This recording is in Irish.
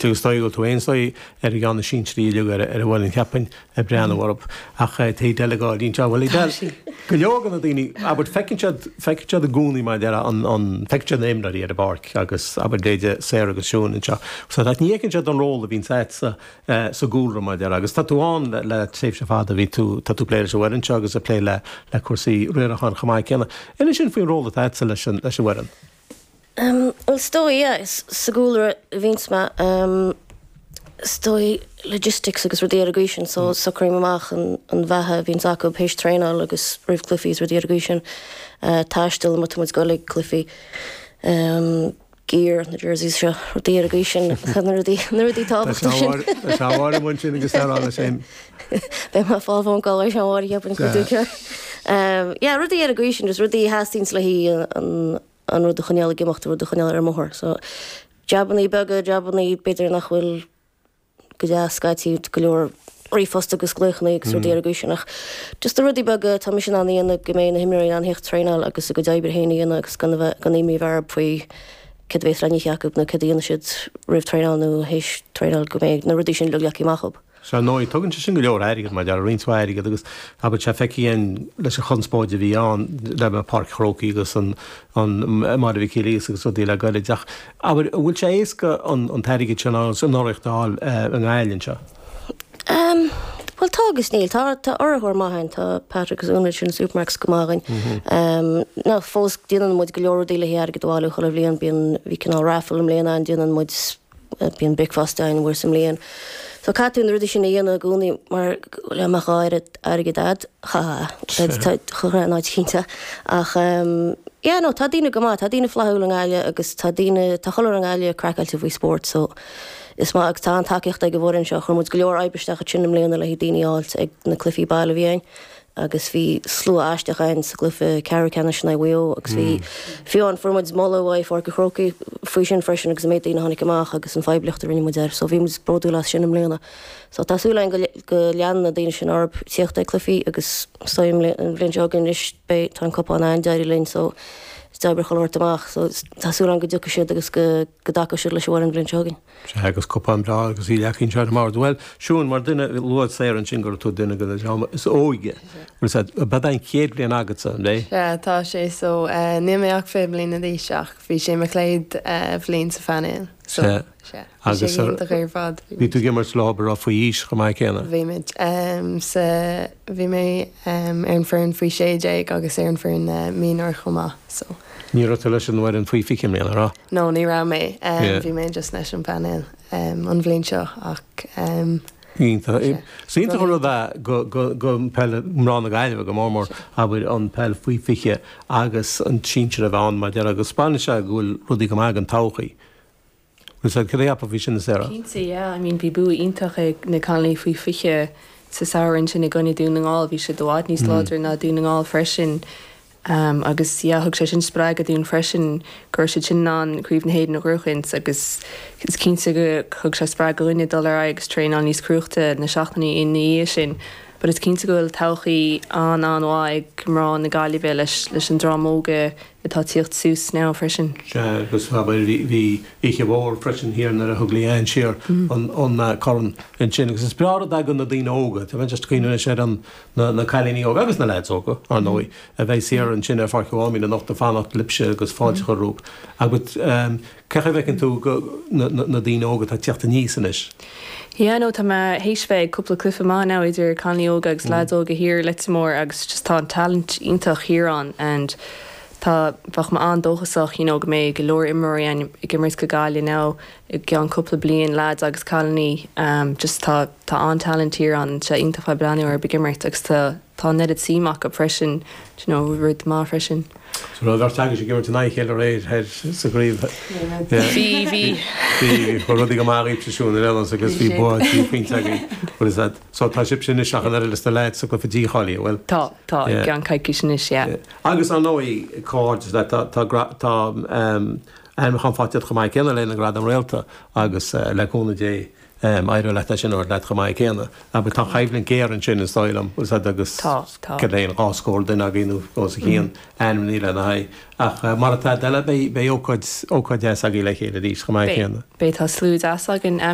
Teagasc Dóigh go bhfuil tú aon saoi ar an gceann a síntir í liug ar a bhfuil an tseapain ag breathnú orthu. Ach fáilte isteach anseo. Bhuel, Tá sí. go leor de na daoine, abair, feiceann siad, feiceann siad i gcónaí mar a déarfá an, an, feiceann siad na imreoirí ar an bpáirc agus, abair, Louise, Sarah agus Siún anseo. Ach ní fheiceann siad an ról a bhíonn sa, sa, sa gcúlra mar a déarfá agus tá tú ann le, le tréimhse fada bhí tú, tá tú ag plé leis an bhfoireann seo agus ag plé le, le cúrsaí riaracháin chomh maith céanna. Inis dúinn faoin ról atá agatsa leis an, leis an bhfoireann. Is dóigh é, sa gcúlra a bhíonns mé, is dóigh, logistics agus rudaí ar an gcaoi sin, so socraím amach an bheatha a bhíonns acu théis traenáil agus roimh cluichí is rudaí ar an gcaoi sin, taisteal, má tá muid ag goil ag cluichí, gear, na jerseys seo, rudaí ar an gcaoi sin, na rudaí, na rudaí tábhachtacha sin. Is amháin a bhain sin agus ar fhána sin. Beidh mé fáil fón gabh leis an bhfarraige ab insint duit é. Yeah, rudaí ar an gcaoi sin, just rudaí a theastaíonns leis an rud a choinneáil ag imeacht, an rud a choinneáil ar an mbóthar. So, jabannaí beaga, jabannaí b'fhéidir nach bhfuil ródheas scaití, go leor ríomhphost agus glaochanna agus rudaí ar an gcaoi sin ach just na rudaí beaga, tá mise in ann a dhéanamh go mbeidh na himreoirí in ann thíocht traenáil agus a gcuid oibre féin a dhéanamh agus gan a bheith, gan imní orthub faoi céard a bheas le n-ithe acu nó céard a dhéanfaidh siad roimh traenáil nó théis traenáil go mbeidh na rudaí sin leagtha amach acub. Ar ndóigh, tógann sé sin go leor airgid, mar a déarfá, roinnt mhaith airgid, agus abair tá sé feicthe againn leis an chonspóid a bhí ann le Páirc an Chrócaigh agus an NFL agus rudaí le gairid. Ach, abair, an bhfuil sé éasca an t-airgead sin agus an urraíocht a fháil i nGaillimh anseo? Bhuel, tá agus níl. Tá urraitheoir maith againn, tá Pat agus Una ansin Supermac's go maith dhúinn. Ach fós, déanann muid go leor rudaí le hairgead a bhailiú chuile bhliain. Bíonn, bhí cineál raffle i mbliana ann, déanann muid, Bíonn bricfeasta againn uair sa mbliain. So caithfidh tú na rudaí sin a dhéanamh i gcónaí mar le go mbeadh oiread airgid a'd. Ha ha ha. Chuirfeadh an áit cinnte. Ach ehm yeah no tá daoine go maith, tá daoine flaithiúil i nGaillimh agus tá daoine, tá chuile áit i nGaillimh craiceáilte faoi spórt so is maith agus tá an-tacaíocht ag an bhfoireann seo. Chuir muid go leor oibre isteach i rith na mbliana le haghaidh daoine a fháilt ag na cluichí baile a bhí againn. agus bhí slua aisteach againn sa gcluiche ceathrú ceannais in aghaidh Mhaigh Eo agus bhí fiú amháin, fuair muid moladh uaidh Pháirc an Chrócaigh faoi sin freisin agus an méid daoine a tháinig amach agus an phoiblíocht a rinne muid air so bhí muid bródúil as sin i mbliana. So tá súil againn go leanann na daoine sin orthu ag tíocht ag cluichí agus so an bhliain seo chugainn anois beidh, tá an cupán ar thaobh linn so is deacra é a thabhairt amach so tá súil againn go dtiocfaidh siad agus go dtacóidh siad leis an bhfoireann an bhliain seo chugainn. Sea, agus cupán breá agus í leagtha anseo ar an mbord. Bhuel, Siún, mar dhuine a luadh saor ansin go raibh tú duine den dream is óige, bhuel, sea, ba é do chéad bhliain agatsa, ab ea? Sea, tá sé, so, níl mé ach fiche bliana d'aois ach bhí sé mo chéad bhliain sa phainéal, so, sea, bhí sé iontach ar fad. Bhí tú ag imirt leis an bhfoireann faoi aois chomh maith céanna? Bhí mé, sea, bhí mé ar an foireann faoi sé déag agus ar an foireann mionúr chomh maith, so. Ní raibh tú leis an bhfoireann faoi fiche i mbliana, an raibh? No, ní raibh mé. Bhí mé just leis an bpainéal an bhliain seo ach Is iontach an rud é do pheil mná na Gaillimhe go mór mór abair an peil faoi fiche agus an sinsir a bheith ann mar a déarfá agus spáineann sé go bhfuil rudaí go maith don todhchaí. An sa Gréap a bhí sin, a Sarah? Cinnte, yeah. I mean bhí bua iontach ag na cailíní faoi fiche sa samhradh ansin i gcoinne Dún na nGall. Bhí siad i bhfad níos láidre ná Dún na nGall freisin agus, yeah, thug sé sin spreagadh dúinn freisin go raibh siad sin in ann Craobh na hÉireann a ghnóchaint agus is cinnte go thug sé spreagadh dhuinne dul ar aghaidh agus traenáil níos cruaichte na seachtainí ina dhiaidh sin. But is cinnte go bhfuil todhchaí an-an-mhaith ag mná na Gaillimhe leis an dream óga atá tíocht suas now freisin. Sea, agus abair, bhí oíche mhór freisin thiar nuair a thug Leanne siar an corn ansin agus is breá an rud ag na daoine óga, tá mé just ag cuimhneamh anois ar na cailíní óga agus na leaids óga, ar ndóigh, a bheidh thiar ansin ar Pháirc an Mháimín anocht ag fanacht libhse agus fáilte a chur romhaibh. Cén chaoi a bhfeiceann tú na daoine óga atá ag tíocht aníos anois? Yeah no tá mé théis bheith ag cúpla cluife maith now idir cailíní óga agus lads óga thiar i Leitir Móir agus just tá an talent iontach thiar ann and tá bheadh mé an-dóchasach you know go mbeidh go leor imreoirí againn ag imirt do Ghaillimh now i gceann cúpla bliain lads agus cailíní um just tá tá an-talent thiar ann and tá sé iontach a bheith ag breathnú orthu ag imirt agus tá tá an oiread suim acu freisin d'you know rud maith freisin. Sa rud ar agus ag imirt in aghaidh a chéile aréir thoir sa gcraobh bhí rudaí go maith daoibhse, Siún ar Ellis agus bhí bua trí phointe agaibh. Bhuel is ait. So tá sibhse anois ach an oiread is na leaids sa gcluife dícháilithe, a bhfuil? Tá, tá. I gceann coicís anois, yeah. Agus ar ndóigh, comhghairdeas leat, tá tá ainmniúchán faighte agat chomh maith céanna le haghaidh na nGradam Réalta agus le cúnamh Dé. Am, éireoidh leat ansin, éireoidh leat chomh maith céanna. Abair, tá an choimhlint géar ansin, is dóigh liom, is ea, agus Tá, tá. céard é an dhá scór duine againn nó os a chionn, ainmnithe lena haghaidh. Ach mar atá i d'fheile, beidh, beidh ócáid, ócáid dheas againn le chéile arís, chomh maith Beidh, céanna. beidh, tá slua deas againn.